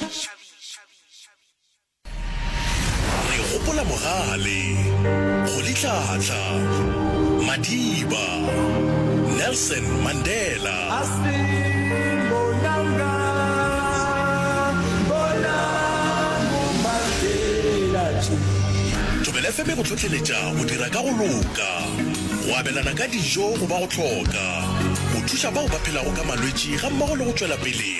Re gopola bogale, go litlhatla, madiba, Nelson Mandela. Thobela FM e go hlohleletša go dira ka go loka, go abelana ka dijo go ba go hloka, go thuša bao ba phelago ka malwetši gammogo le go tšwela pele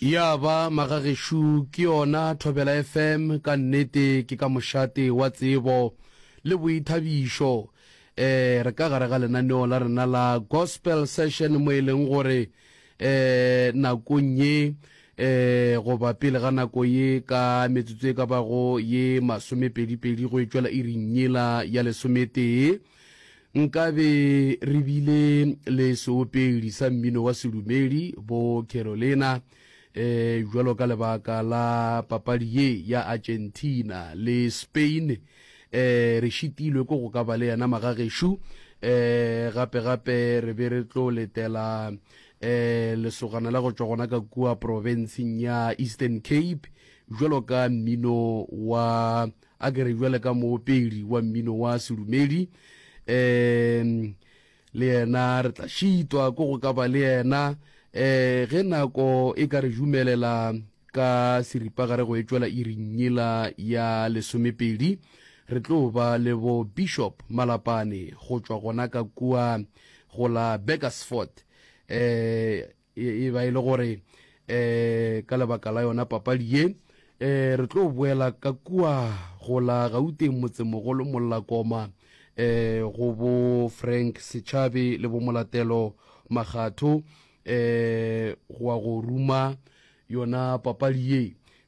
Ya ba, magagešo, ke yona Thobela FM, ka nnete ke ka mošate wa tsebo le boithabišo. Eh, re ka gare ga lenaneo la rena la Gospel Session mo e leng gore eh, nakong ye eh, goba pele ga nako ye ka metsotso e ka bago ye masomepedipedi go e tšwela iring yela ya lesometee, Nkabe re bile le seopedi sa mmino wa sedumedi, bo Carolina, e, bjalo ka lebaka la papadi ye ya Argentina le Spain. E, re šitilwe ke go ka ba le yena magagešo. E, gape gape re be re tlo letela e, lesogana la go tšwa gona ka kua profenseng ya Eastern Cape, bjalo ka mmino wa A ke re jwale ka moopeli wa mmino wa sedumedi, um le yena re tla šitwa ko go ka ba le yena um ge nako e ka re jumelela ka seripagare go etšwela irinyela ya lesomepedi re tlo ba le bo bishop malapane go tšwa gona ka kua go la beckersford um e ba e le gore um ka lebaka la yona papadi ye um re tlo boela ka kua go la gauteng motsemogolo mollakoma um go bo frank setšhabe le bomolatelo magatho um goa go ruma Yona papadi ye,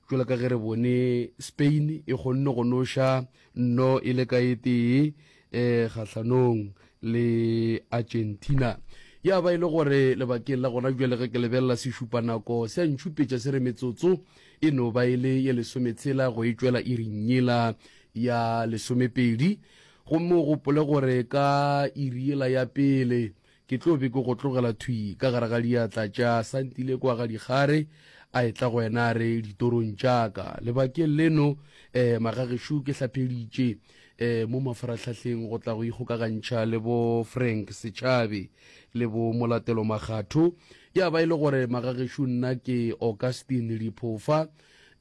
bjalo ka ge re bone Spain e kgonne go noša nno e le ka e tee um kgahlanong le Argentina. Ya ba e le gore lebakeng la gona bjale ge ke lebelela sešupanako se a ntšhupetša se re metsotso e no ba e le ye lesometshela go e tšwela iring yela ya lesomepedi gomme o gopole gore ka iri yela ya pele Ke tlo be ke go tlogela thwi ka gare ga diatla tša Santile kwa ga Dikgare, a etla go wena a re, Ditorong tša ka. Lebakeng leno, eh, magagešo, ke hlapheditše, eh, mo mafarahlahleng go tla go ikgokagantšha le bo Frank Setšhabe le bo Molatelo Makgatho. Ya ba e le gore magagešo nna ke Augustine Liphofa,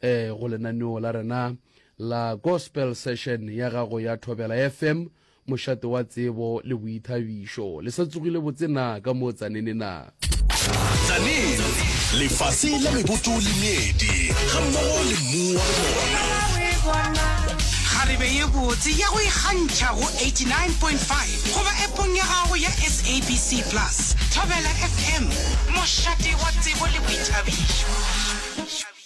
eh, go lenaneo la rena la Gospel Session ya gago ya Thobela FM, Mošate wa tsebo le boithabišo. Le sa tsogile botse na ka mo Tzaneen na? Tzaneen, lefase la meboto le meedi ga mmogo le mmu wa bona. Kgarebe ye botse ya go ikgantšha go 89.5 goba epong ya gago ya SABC Plus. Thobela FM, mošate wa tsebo le boithabišo.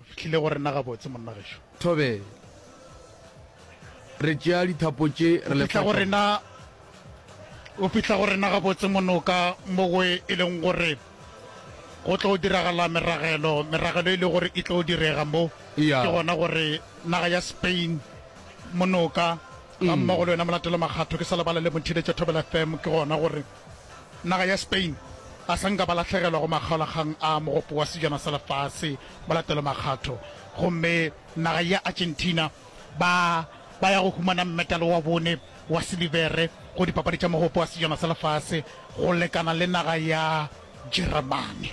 O fihlile go rena gabotse, monna gešo. Thobe, re tšea dithapo tše re le fihla go rena o fihla go rena gabotse monoka mo go e leng gore go tlo diragala meragelo meragelo e le gore e tlo direga mo ke gona gore naga ya spain monoka ga mm. mmogo le wena molatelo makgatho ke sa lebala le motheletša thobela fm ke gona gore Naga ya Spain ga sa nka ba lahlegelwa go makgaolakgang a Mogopo wa Sejana sa Lefase mo latelomakgatho, gomme naga ya Argentina ba ba ya go humana mmetale wa bone wa silibere go Dipapadi tša Mogopo wa Sejana sa Lefase go lekana le naga ya Jeremane.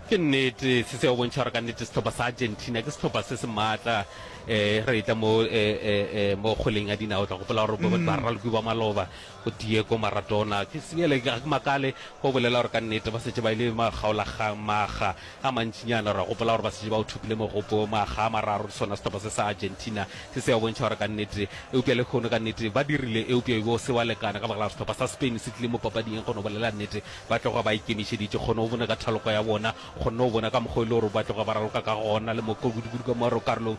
Ke nnete se se a bontšha gore ka nnete sehlopha sa Argentina ke sehlopha se se maatla. Um re etla mo um mo kgweleng ya dinao, o tla gopola gore ba ralokiwa maloba. Go Diego Maradona, ke seele, ga ke makale go bolela gore ka nnete ba šetše ba e le makgaolakgang. Makga a mantšinyana re a gopola gore ba šetše ba o thopile mogopo makga a mararo le sona sehlopha se sa Argentina se se a bontšha gore ka nnete, eupša lehono ka nnete ba dirile, eupša e be o se wa lekana ka baka la gore sehlopha sa Spain se tlile mo papading e kgone go bolela nnete ba tloga ba ikemišeditše. Kgone o bone ka thaloko ya bona, kgonne go bona ka mokgwa e le gore ba tloga ba raloka ka gona le mo kudukudu ka mo karolong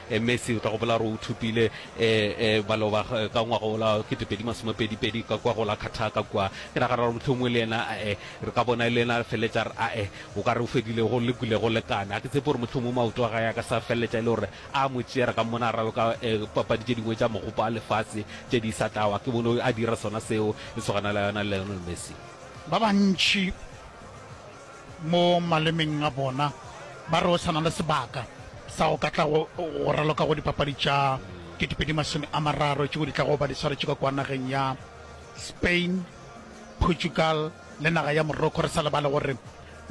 Eh Messi, o tla gopola gore o thopile eh, eh, baloba eh, ka ngwaga o la ketepedi masomepedi-pedi ka kwa go la Qatar ka kua. Ke nagana gore mohlomongwe le yena a eh, re ka bona e le yena a feleletša re a eh, o ka re o fedile go le kule go lekane. A ke tsepe gore mohlomongwe maoto a gae a ka sa feleletša e le gore a mo tšea, re ka mmona a ralo ka eh, papadi tše dingwe tša mogopo a lefase tše di sa tlawa. Ke bone a dira sona seo e tshogana la yona Lionel Messi. Ba bantši mo malemeng a bona, ba re o sa na le sebaka sa go ka tla go raloka go dipapadi tša 2030 tšeo di tlago ba di swaretše ka kua nageng ya Spain, Portugal le naga ya Morocco, re sa lebale gore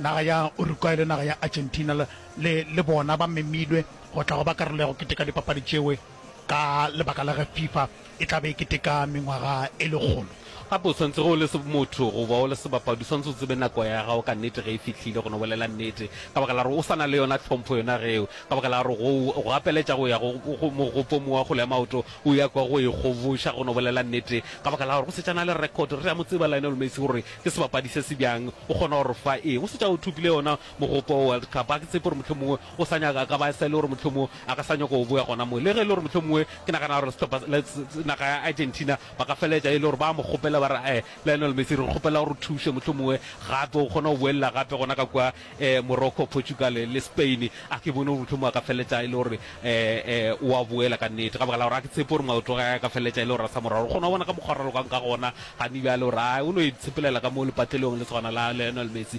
naga ya Uruguay le naga ya Argentina le bona ba memilwe go tla go ba karolo ya go keteka dipapadi tšeo. ka lebaka la ge Fifa e tla be e keteka mengwaga e lekgolo. Gape o swanetse ge o le motho goba o le sebapadi, o swanetse o tsebe nako ya gago ka nnete ge e fihlile, go no bolela nnete, ka baka la gore o sa na le yona tlhompho yona ge eo, ka baka la gore go go gapeletša go ya go mogopo mo wa kgole ya maoto, o ya kwa go e kgoboša, go no bolela nnete, ka baka la gore go setšana le record, re a mo tseba Lionel Messi gore ke sebapadi se se bjang, o kgona go re fa eng, o setša o thopile yona. Mogopo wa World Cup, ga ke tshepe gore mohlomongwe o sa nyaka, a ka ba e sa e le gore mohlomongwe a ka sa nyaka go boya gona mo. Le ge e le gore mohlomongwe ke nagana gore sehlopha, naga ya Argentina ba ka feleletša e le gore ba mo kgopela ba re, Ae, Lionel Messi, re kgopela gore o thuše mohlomongwe gape o kgone go boelela gape gona ka kua Morocco, Portugal le Spain. A ke bone gore mohlomongwe a ka feleletša e le gore o a boela ka nnete, ka baka la gore ga ke tshepe gore maoto a gage a ka feleletša e le gore a sa mo rwala. O kgona go bona ka mokgwa a rwalokang ka gona gane bjale gore, ae, o no itshepelela ka mo lepatlelong le swana la Lionel Messi.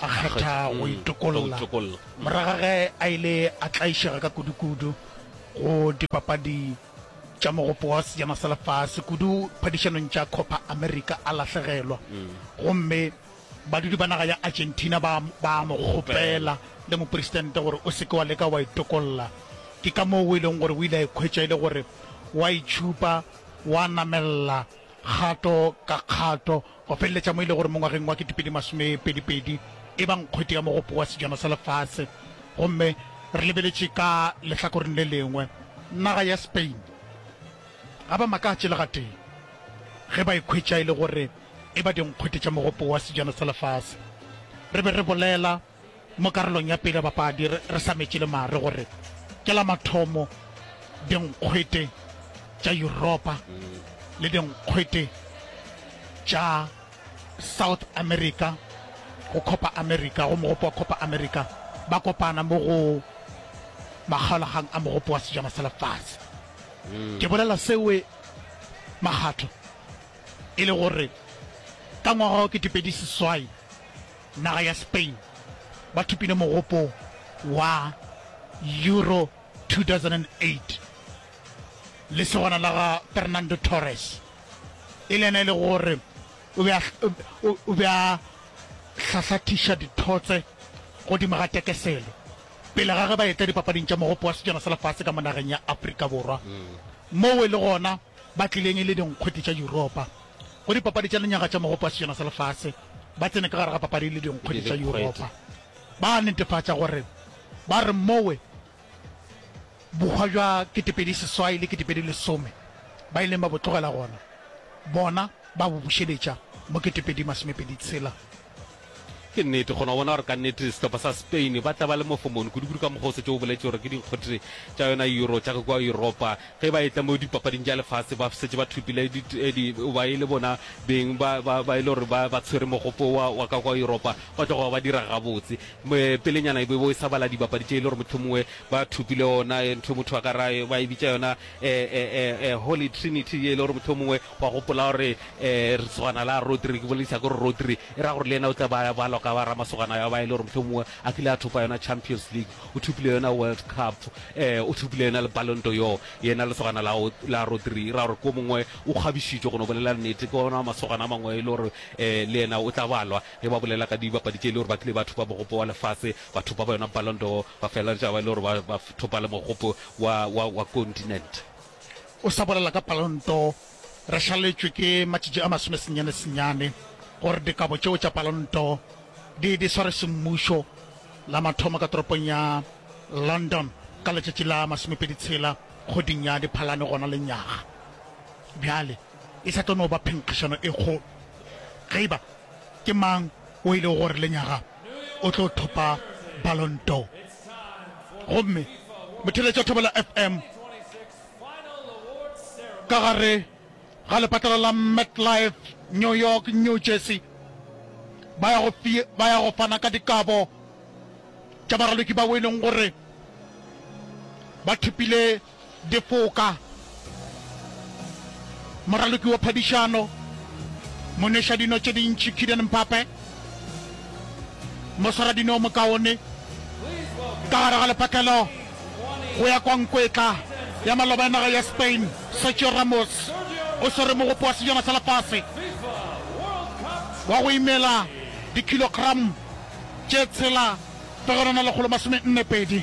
a kgetha go itokolla morago ga ge a ile a tlaišega ka kudukudu go dipapadi tša mogopo wa sejana sa lefase kudu phadišanong tša copa america a lahlegelwa gomme badudi ba naga ya argentina ba ba mo kgopela le mopresidente gore o seke wa leka wa itokolla ke ka moo o e leng gore o ile a ikhwetša e le gore wa itšhupa wa namelela kgato ka kgato Go feleletša mo e lego gore mo ngwageng wa ketepedi masome pedi pedi e ba nkgwete ya mogopo wa Sejana sa Lefase, gomme re lebeletše ka lehlakoreng le lengwe, naga ya Spain ga ba makatše le gatee ge ba ikhwetša e le gore e ba dinkgwete tša mogopo wa Sejana sa Lefase. Re be re bolela. Mo karolong ya pele ya bapadi re sametše le mare gore ke la mathomo dinkgwete tša Yuropa le dinkgwete tša South America go Copa America, go Mogopo wa Copa America, ba kopana mo go makgaolagang a Mogopo wa Sejana sa Lefase. Ke bolela sewe makgatho e le gore ka ngwaga wa ketepedi seswai, Naga ya Spain ba thopile mogopo wa Euro 2008. Lesogana la ga Fernando Torres e le yena e le gore o be a, o, o be a hlahlathiša dithotse godimo ga tekeselo pele ga ge ba etla dipapading tša mogopo wa sejana sa lefase ka mo nageng ya Afrika Borwa moo e le gona ba tlileng e le dinkgwete tša Yuropa. go dipapadi tša lenyaga tša mogopo wa sejana sa lefase ba tsene ka gare ga papadi le dinkgwedi tša yuropa ba netefatša gore ba re mowe bokgwa jwa ketepedi seswai le ketepedi lesome ba ileng ba bo tlogela gona bona ba bo bušeletša mo ketepedi masomepedi tshela Ke nnete, kgona bona gore ka nnete sehlopha sa Spain ba tla ba le mofomoni kudu-kudu ka mokgwa o setše o boletše gore ke dinkgothe tša yona Euro tša ka kua Europa ge ba etla mo dipapading tša lefase ba setše ba thopile di, ba e le bona beng ba, ba, ba e le gore ba, ba tshwere mogopo wa, wa ka kua Europa ba tlo go ba dira gabotse. Pelenyana e bo e sa bala dibapadi tše e le gore mohlomongwe ba thopile ona eh, ntho motho a ka ra eh, ba e bitša yona eh, eh, eh, eh, Holy Trinity ye e le gore mohlomongwe Wa gopola gore lesogana la Rodri, ke bolelisa gore Rodri, e ra gore le yena o tla ba ya balwa ka ba ramasogana ya ba e le gore mohlomongwe a kile a thopa yona Champions League, o thopile yona World Cup, o thopile yona le Ballon d'Or. Yena lesogana la la Rodri, e ra gore ke o mongwe o kgabišitšwe, go no bolela nnete, ke ona masogana a mangwe e le gore le yena o tla balwa ge ba bolela ka dibapadi tše e le gore ba kile ba thopa mogopo wa lefase, ba thopa ba yona Ballon d'Or, ba feleletša ba e le gore ba ba thopa le mogopo wa, wa, wa continent. O sa bolela ka palonto, re šaletšwe ke matšatši a masome senyane senyane gore dikabo tšeo tša palonto di di swarwe semmušo, la mathomo ka toropong ya London ka letšatši la masomepedi tshela kgweding ya Diphalane gona lenyaga. Bjale, e sa tlo no ba phenkgišano e kgolo ge e ba ke mang o ilego gore lenyaga o tlo thopa Ballon d'Or. Gomme Motheeletša wa Thobela FM ka gare ga lepatlelo la MetLife, New York, New Jersey, ba ya go, ba ya go fana ka dikabo tša baraloki bao e leng gore ba thopile Difoka, moraloki wa phadišano, monwešadino tše dintši Kylian Mbappe, moswaradino o mokaone ka gare ga lepatlelo go ya kwa nkwetla ya maloba ya naga ya Spain, Sergio Ramos o swere mogopo wa Sejana sa Lefase wa go imela dikhilogram tše tshela fegelwana lekgolo masome nne pedi.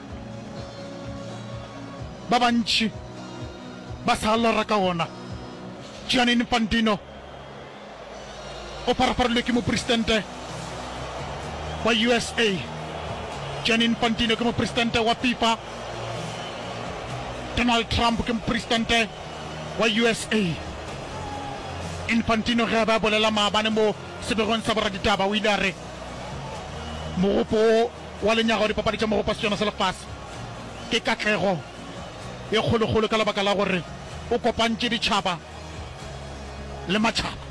ba bantši ba sa lora ka wona. Gianni Infantino o pharafarilwe ke mopresidente wa USA. Gianni Infantino ke mopresidente wa FIFA. Donald Trump ke mopresidente wa USA. Infantino ge a be a bolela maabane mo sebegong sa boraditaba o ile a re mogopo wo wa lenyaga wa Dipapadi tša Mogopo wa Setšana sa Lefase ke katlego e kgolokgolo ka lebaka la gore o kopantše ditšhaba le matšhaba.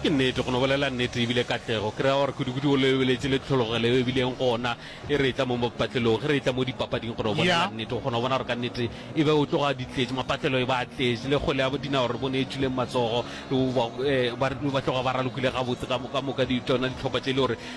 Ke nnete, go no bolela nnete e bile katlego, ke ra gore kudukudu o lebeletše le tlhologelo yeo e bileng gona e re etla mo mopatlelong. Ge re etla mo dipapading, go no bolela nnete, o kgona go bona gore ka nnete e be o tloga di tletše, mapatlelo e ba a tletše, le kgwele ya dinao re bone e tšwileng matsogo, ba tloga ba ralokile gabotse ka moka di tšona dihlopha tše e le gore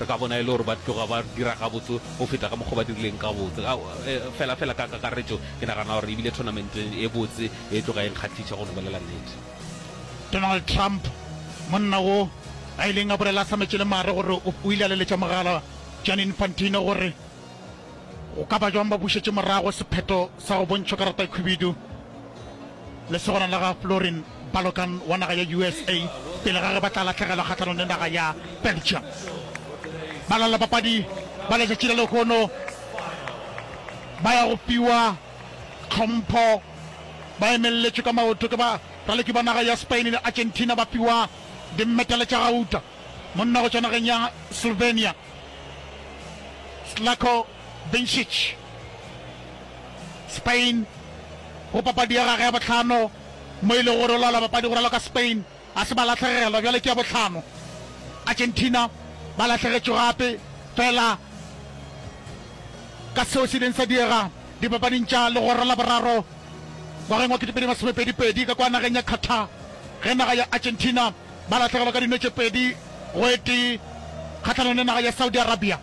Re ka bona e le gore ba tloga ba dira gabotse go feta ka mokgwa o ba dirileng ka botse. Ka, e, fela, fela ka kakaretšo, ke nagana gore e bile thonamente e botse e tloga e nkgahliša, go no bolela nnete. Donald Trump, monna wo a ileng a bolela a hlametše le mare gore o, o ile a leletša mogala Gianni Infantino gore, Go ka ba bjang ba bušetše morago sephetho sa go bontšhwa karatakhwibidu lesogana la ga Florin Balogun wa naga ya USA pele ga ge ba tla lahlegelwa kgahlanong le naga ya Belgium? Balaodibapadi ba letšatši la lehono ba ya go fiwa tlhompho ba emelletšwe ka maoto ke baraloki ba naga ya Spain le Argentina ba fiwa dimmedale tša gauta. Monna go tšwa nageng ya Slovenia Zlatko Vincic, Spain, go papadi ya gagwe ya bohlano mo e lego gore o laola bapadi go raloka ka Spain a se ba lahlegelwa, bjale ke ya bohlano. Argentina ba lahlegetšwe gape fela ka seo se ileng sa diega dipapading tša legoro la boraro ngwageng wa 2022 ka kwa nageng ya Qatar ge naga ya Argentina ba lahlegelwa ka dino tše pedi go e tee kgahlanong le naga ya Saudi Arabia.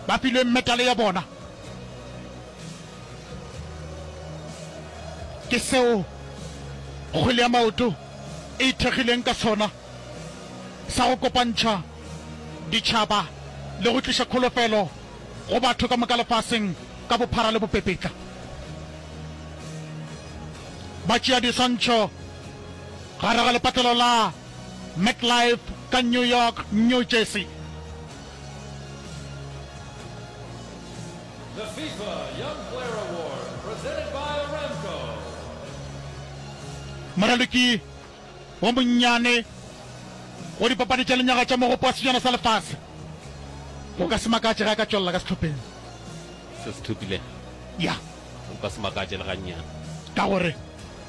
Ba filwe metale ya bona. Ke seo kgwele ya maoto e ithekgileng ka sona, sa go kopantšha ditšhaba le go tliša kholofelo go batho ka moka lefaseng ka bophara le bopepetla. Batšeadiswantšho Gare ga lepatlelo la MetLife ka New York, New Jersey. The FIFA Young Player Award presented by Aramco. Moraloki wo monnyane go dipapadi tša lenyaga tša mogopo wa sejana sa lefase. Go ka se makatše ge a ka tšwelela ka sehlopheng se se thopilego. Ya. Go ka se makatše le gannyane. Ka gore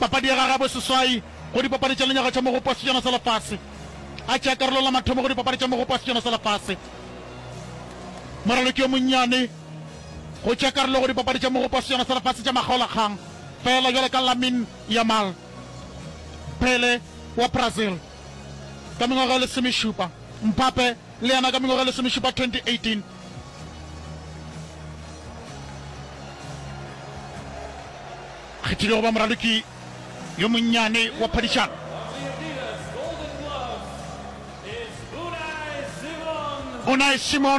papadi ya gagwe ya boseswai go Dipapadi tša Lenyaga tša Mogopo wa Sejana sa Lefase. A tšea karolo la mathomo go Dipapadi tša Mogopo wa Sejana sa Lefase. Moraloki yo monnyane go tšea karolo go Dipapadi tša Mogopo wa Sejana sa Lefase tša Makgaolakgang feela bjalo ka Lamine Yamal, Pele wa Brazil ka mengwaga e lesomešupa, Mbappe le yena ka mengwaga e lesomešupa, 2018. kgethilwego ba moraloki yo monnyane wa phadišano. Unai Simon.